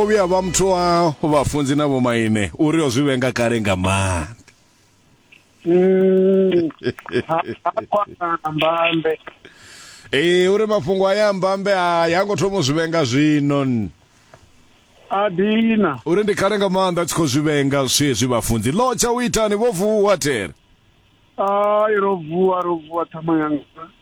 Vho vhuya vha muthu wa vhafunzi na vhomaine uri o zwi vhenga kale nga maanḓa mm. mbambe ee uri mafhungo a ya mbambe a ya ngo thoma u zwi vhenga zwino a dina uri ndi kale nga maanḓa tshi khou zwi vhenga zwezwi vhafunzi lo tsha u itani vho vuwa tere ai ro vuwa ro vuwa thama yanga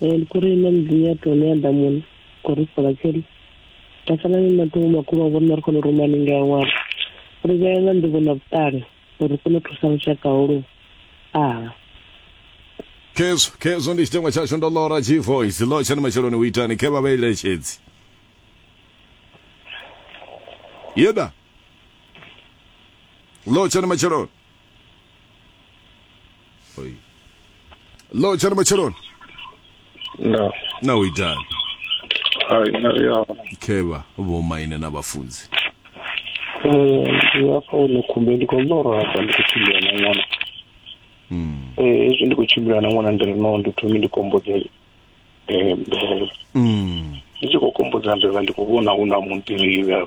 Eh, ndi kuri nṋe mudzimu ya tone ya damuni kori ri sola tsheli ra sala ni matungo makhulu a vhona ri khona u ruma ninga ya ṅwana ri vhea nga nḓivho na vhuṱali uri ri kone u thusa lushaka holu aha khezwo khezwo ndi tshiteṅwa tshashu ndo lora g voice lo tshani matshiloni u itani khe vha vha eletshedzi yeda lo tshani matshiloni Oi. Lo jana matsheloni. No. Na u itani? Hai na ya. Khevha vho maine na vhafunzi. Eh, ndi afha hone khumbe ndi khou ḽora hafha ndi khou tshimbila na ṅwana. Mm. Eh, hezwi ndi khou tshimbila na ṅwana ndi ri no ndi thome ndi kombodze eh mvelele. Mm. Ndi tshi khou kombodza mvelele ndi khou vhona hu na munḓirivhe.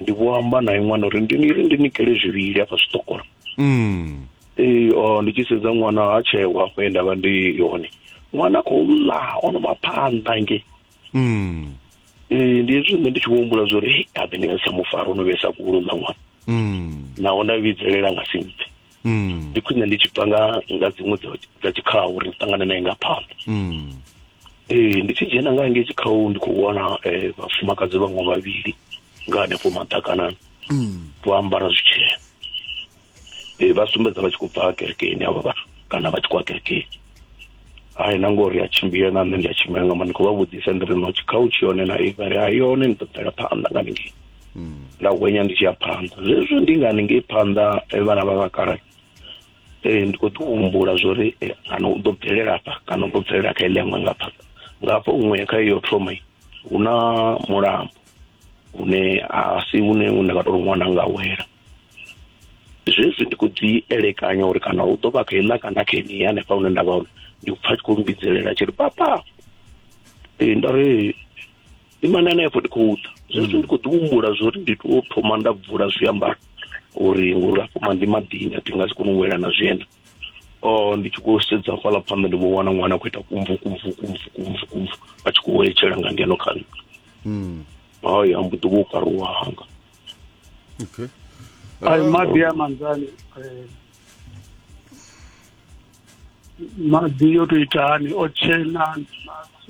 ndi vho amba na ṅwana uri ndi ni ri ndi nikele zwivhili hafha zwiṱokolo mm. ee o ndi tshi sedza ṅwana ha tshewa afho ye ndavha ndi hone ṅwana khou ḽa ono maphanḓa nge mm. ee ndi hezwi nṋe ndi tshi vho humbula zwa uri habe ndi nga si tsha mufara ono vhesa kulo ḽa ṅwana mm. naho nda vhidzelela nga si mpfe mm. ndi khwine ndi tshi bva nga nga dziṅwe dza tshikhaho uri ndi ṱangane naye nga phanḓa mm. ee ndi tshi dzhena nga ngei tshikhaho ndi khou wana eh, vhafumakadzi vhaṅwe vhavhili nga hanefho maḓakanani mm. vho ambara zwitshena ee eh, vha sumbedza vha tshi khou bva kerekeni avha vhathu kana vha tshi khou a kerekeni hai na ngori a tshimbile na nṋe ndi a tshimbila nga mani khou vha vhudzisa ndi ri no tshikhautshi yone na iva ri hai yone ni ṱoḓela phanḓa nga ningei hmm. nda hwenya ndi tshi ya phanḓa zwezwo ndi nga ningei phanḓa eh, vhana vha vhakala eh, ndi khou ḓi humbula zwo ri eh, kana u ḓo bvelela afha kana u ḓo bvelela kha iḽengwe nga phanḓa nga hafho huṅwe kha iyo thoma hu na mulambo une a si une une nga tou ri ṅwana nga wela zwezwi ndi khou dzi elekanya uri kana hu ḓo vha kha iḽa kana kha ini hanefha hune nda vha hone ndi pfa tshi khou mbidzelela tshi ri papa ee nda ri imana hanefho ndi khou ḓa zwezwi ndi khou ḓi humbula zwo uri ndi to thoma nda bvula zwiambaro uri ngori afho maḓi maḓini a thi nga si kone u wela na zwienda o oh, ndi tshi khou sedza fhaḽa phanḓa ndi vho wana ṅwana a khou ita kumvu kumvu kumvu kumvu kumvu a tshi khou wetshela nga ngeno kha nṋe hmm. haya mbuḓi vho karuwa hanga okay ay um, maḓi a manzani eh, maḓi yo to ita hani o tshena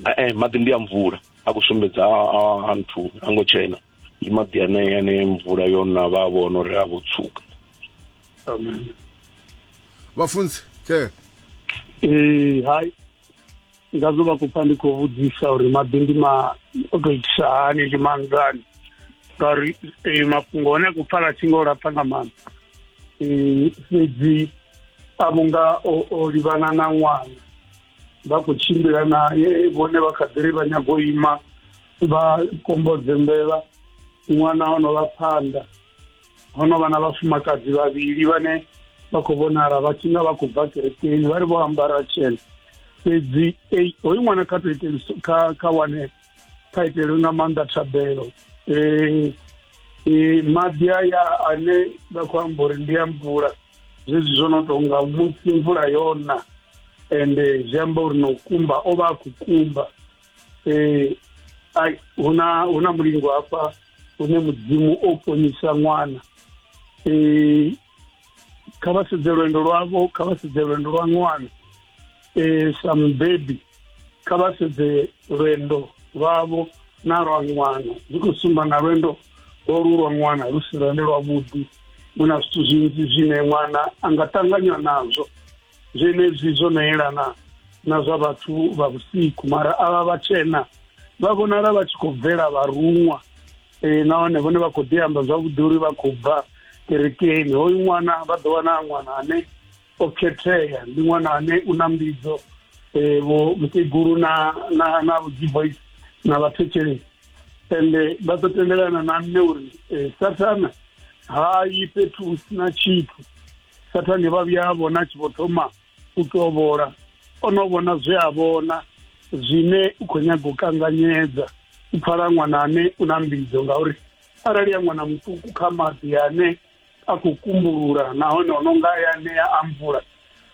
eh, eh maḓi ndi a mvula a ku sumbedza a nthu a ngo tshena ndi maḓi ane ane mvula yo na vha vhona uri a vho tsuka amen vhafunzi ke eh hai ngazwo vha khou pfa ndi khou vhudzisa uri maḓi ndi ma o tou itisa hani ndi manzani ngauri eh, mafhungo hone a khou pfala tshi nga o lapfa nga maanḓa eh, fhedzi a vhunga o livhana na ṅwana vha khou tshimbila naye vhone vha kha ḓiri vha nyago ima vha kombodze mbevha ṅwana o no vha phanḓa ho no vha na vhafumakadzi vhavhili vhane vha khou vhonala vha tshi nga vha khou bva kerekeni vha ri vho ambara tshena fhedzi hoyu ṅwana kha to iteli kha kha wane kha itelwe nga maanḓa thabelo um maḓi aya ane vha khou amba uri ndi a mvula zwezwi zwo no tonga musi mvula yona ende zwi amba uri no kumba o vha a khou kumba um huna huna mulingo hafha hune mudzimu o ponisa ṅwana um kha vha sedze lwendo lwavho kha vha sedze lwendo lwa ṅwana um sa mubebi kha vha sedze lwendo lwavho na lwa ṅwana zwi khou sumba na lwendo lolu lwa ṅwana lu si lwende lwavhuḓi hu na zwithu zwinzhi zwine ṅwana a nga ṱanganywa nazwo zwenezwi zwo no yelana na zwa vhathu vha vhusiku mara avha vhatshena vha vhonala vha tshi khou bvela vharuṅwa um nahone vhone vha khou ḓi amba zwavhuḓi uri vha khou bva kerekeni hoyu ṅwana vha ḓo wana ṅwana ane o khethea ndi ṅwana ane u na mbidzo um vho mukegulu na na na vhudzivoice na vhathetshelesi ende vha ḓo tendelana na nṋe uri eh, sathana ha yi fhethu hu sina tshithu sathane vha vhuya vhona tshi vho thoma u tovhola o no vhona zwe a vhona zwine u khou nyaga u kanganyedza u pfala ṅwana ane u na mbidzo ngauri arali ya ṅwana muṱuku kha maḓi ane a khou kumbulula nahone o no nga ya ṋea a mvula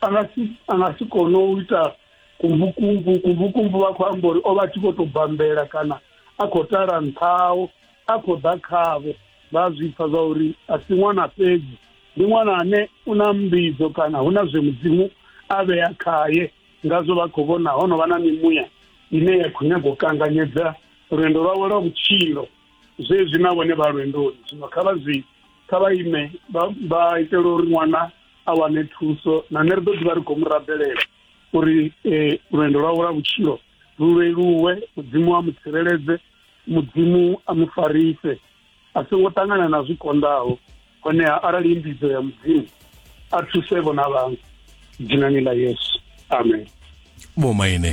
a nga si a nga si kone u ita kumbukumbu kumbukumbu vha khou amba uri o vha tshi khou tou bambela kana a khou tala nṱhaho a khou ḓa khavho vha zwi pfa zwa uri a si ṅwana fhedzi ndi ṅwana ane u na mbidzo kana hu na zwe mudzimu a vhea khaye ngazwo vha khou vhona ho no vha na mimuya ine ya khou nyaga u kanganyedza lwendo lwawe lwa vhutshilo zwezwi na vhone vha lwendoni zwino kha vha zwi kha vha ime vha itela uri ṅwana a wane thuso na nṋe ri ḓo ḓivha ri khou mu rabelela uri um lwendo lwawe lwa vhutshilo lu leluwe mudzimu a mu tsireledze mudzimu a mu farise a songo ṱangana na zwi konḓaho honeha arali i mbidzo ya mudzimu a thuse vhona vhaṅwe dzinani ḽa yesu amen vhomaine